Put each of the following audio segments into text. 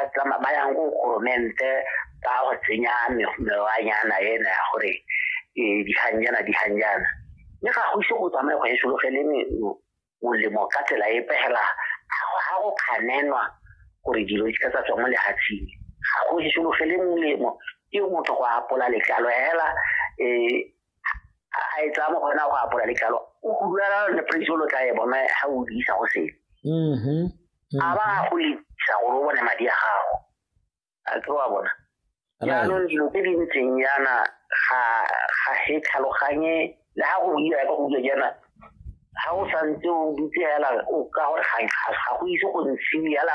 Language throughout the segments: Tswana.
ba tsama ba yang go goromente ba go tsenya mewanyana ena ya gore e, diganjana diganjana mme ga go ise go tsamaye go e sologele molemo ka tsela e pegela ga go kganenwa gore dilo di ka tsa tswa mo lehatsheng ga go e sologele molemo ke motho go apola letlalo hela um a e tsaya mo go ena go apola letlalo o kuduela le praise lo tla e bona ga o diisa go sele mm-hmm. mm-hmm. a ba go lisa gore o bone madi a gago a ke wa bona jaanong dilo tse di ntseng yana ga ga he tlhaloganye le ga go dira ka go dira jaana ga o santse o dutse fela o ka gore ga go ise go ntshiwe fela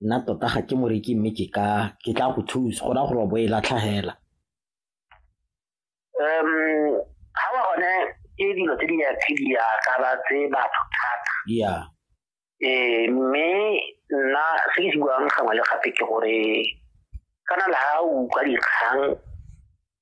nna tota ga ke moreki mme ke ka ke tla go thusa go na gore bo e latlhagela um ga ba gone ke dilo tse di ya tse di ya ka ba tse batho thata ya eh mme nna se ke se buang gangwe le gape ke gore kana la ha o utlwa dikgang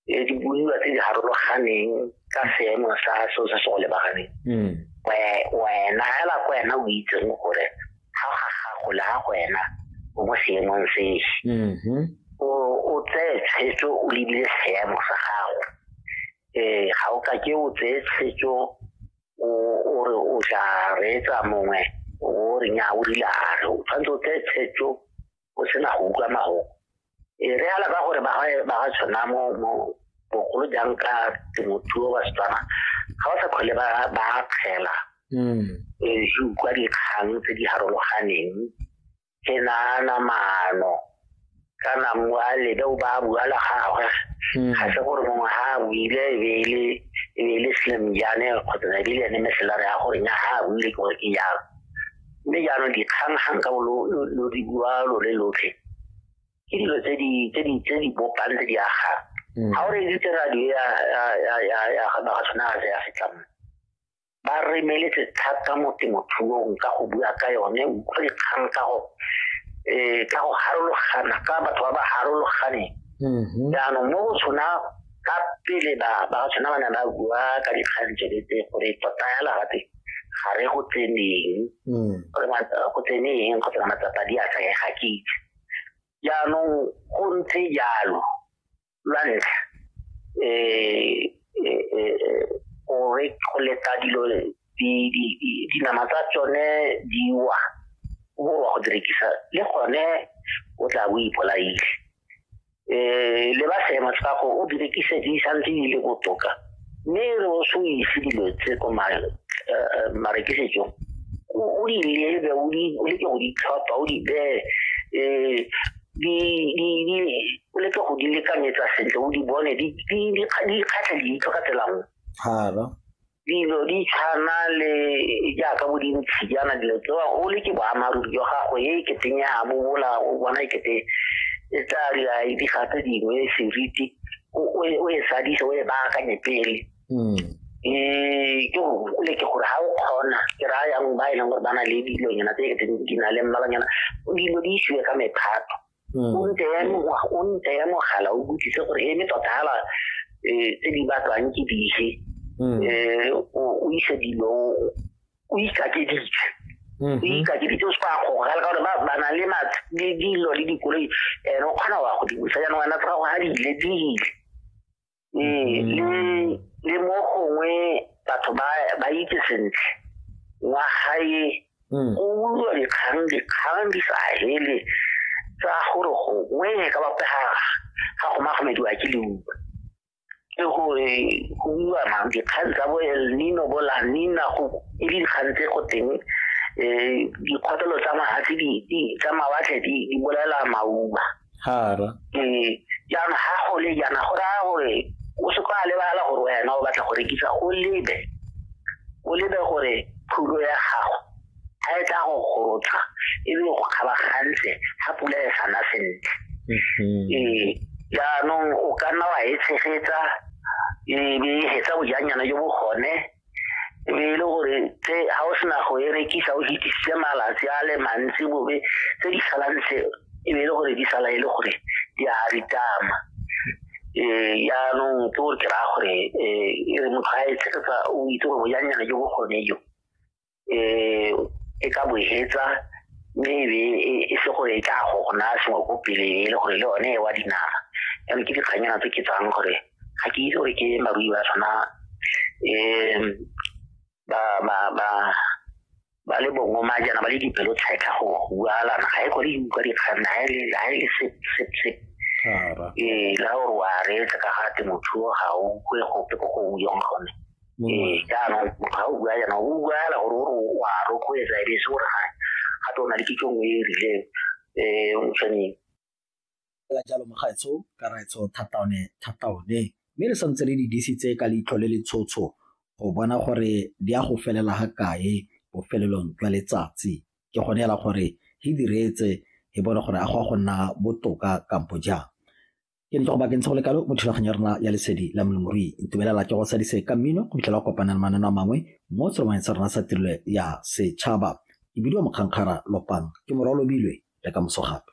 le dibuiwa tse di harologaneng ka seemo sa seo se se go lebaganeng hmm. wena hela ko wena o itseng gore ga ga gago le ga go wena o mo seemong sese mm-hmm. o tseye tshwetso o lebile seemo sa gago um ga o ka ke o tseye tshwetso o re o tla reetsa mongwe o re nya o rilare o tshwanetse o tseye tshwetso o sena go utlwa mago e re ala ba gore ba ga tshwana mo mo bogolo jang ka temothuo ba setswana ga ba sa kgole ba ba kgela mm. e se utlwa dikgang tse di harologaneng ke nana mano kana mwa le ba ba bua la gagwe mm. ga se gore mongwe ha a buile e be le e be le slim jane kgotsa e be le ene meselare ya gore nya ha a buile ke gore ke jalo mme jaanong dikgang gang ka lo di bua lo le lotlhe ke dilo tse di tse di tse di bopang tse di agang mm. ga o reeditse radio ya ya ga ba tshwana ga ya setlamo ba remeletse thata mo temothuong ka go bua ka yone utlwa dikgang ka go um ka go harologana ka batho ba ba harologaneng mm-hmm. jaanong mo go tshwana ka pele ba ba tshwana ba ne ba bua ka dikgang tsone tse gore tota ya larape ga re go tseneng mm. gore go tseneng go tsena matsapa di a tsaya ga ke itse jaanong go ntse jalo lwa ntlha um go leta dilo dinama tsa tsone di wa go direkisa le gone o tla bo ipolaile um le ba seema sa go o direkise di santse di le botoka mme re o se o ise dilo tse ko marekisetsong o di lebe o leke go di tlhopha o di bee um o leke go di lekanyetsa sentle o di bone di kgatlha leitlho ka tsela nngwe dilo di tshwana le jaaka bo dintshi jaana dilo tsewa o le ke boammaaruri jwa gago e keteng ya bo bola o bona e kete e tla dira diga tse dingwe seriti o e sadise o e baakanye pele um ke gole ke gore ga o kgona ke raya yang ba e leng gore ba na le dilonyana tse e keteng di na le mmalonyana dilo di isiwe ka mephato hmm. o nte ya o nte ya mogala o butlise gore e me tota hala e tse di batlwang ke dife hmm. e o ise dilo o isa ke ditse hmm. o isa ke ditse o se go ga le gore ba ba na le ma di dilo le dikoloi ene o kgona wa go di busa ya nwana tsa go ha di le di ee le le mo gongwe batho ba ba itse sentle wa gae mm. o ulwa dikgang dikgang di sa hele tsa gore gongwe ka bapega ga go magomediwa ke leuba ke gore go uwa mang dikgang tsa bo el nino bo la nina go e le dikgang tse go teng um dikgotelo tsa mahatlhe tsa mawatlhe di bolaela mauba hara ee jaanong ga go le jaana go raya gore o se kwa lebala gore wena o batla go rekisa o lebe o lebe gore thulo ya gago ga e tla go gorotsa e be go kgabagantle ga pula e sana sentle mm-hmm. ee jaanong o ka nna wa e tshegetsa e be e hetsa bojanyana jo bo gone e be e le gore tse ga o sena go e rekisa o fitisitse malatsi a le mantsi bobe tse di salang tse e be e le gore di sala e le gore di a ritama um yaanong ke gore ke raya gore um e re motho ga e tshegetsa o itse gore bojanyana jo bokgone jo eh, e ka bojetsa mme ebe e, e se gore e tla go go naya sengwe ko pele e le gore le one e wa dinara jalo ke dikganyana tse ke tsang gore ga ke itse gore ke marui ba tshwana um ba ba ba ba le bongwe ma jana ba le dipelo tsheka go bualana ga e kore utlwa dikgang ga e le e ee la gore wa reetsa ka ga temothuo ga o kwe gope ko go o yong gone ee jaanong ga o bua jaanong o bua fela gore o re wa rotloetsa e be se gore ga gape o na le kitso nngwe e e rileng um o tshwaneng fela jalo mogaetsho ka raetsho thataone thataone mme le santse le di disitse ka leitlho le le tshotsho go bona gore di a go felela ga kae bofelelong jwa letsatsi ke gone fela gore e diretse e bone gore a go a go nna botoka kampo jang ke ntlo go bakeng go lekalo mo thulaganyo ya rona ya lesedi la molemoruyi ntumelela ke go sadise ka mmino go fitlhela go kopana le manano a mangwe mo tsholomaneng sa rona sa tirelo ya setšhaba ke bidiwa mokgankgara lopang ke morwa lobilwe le ka moso gape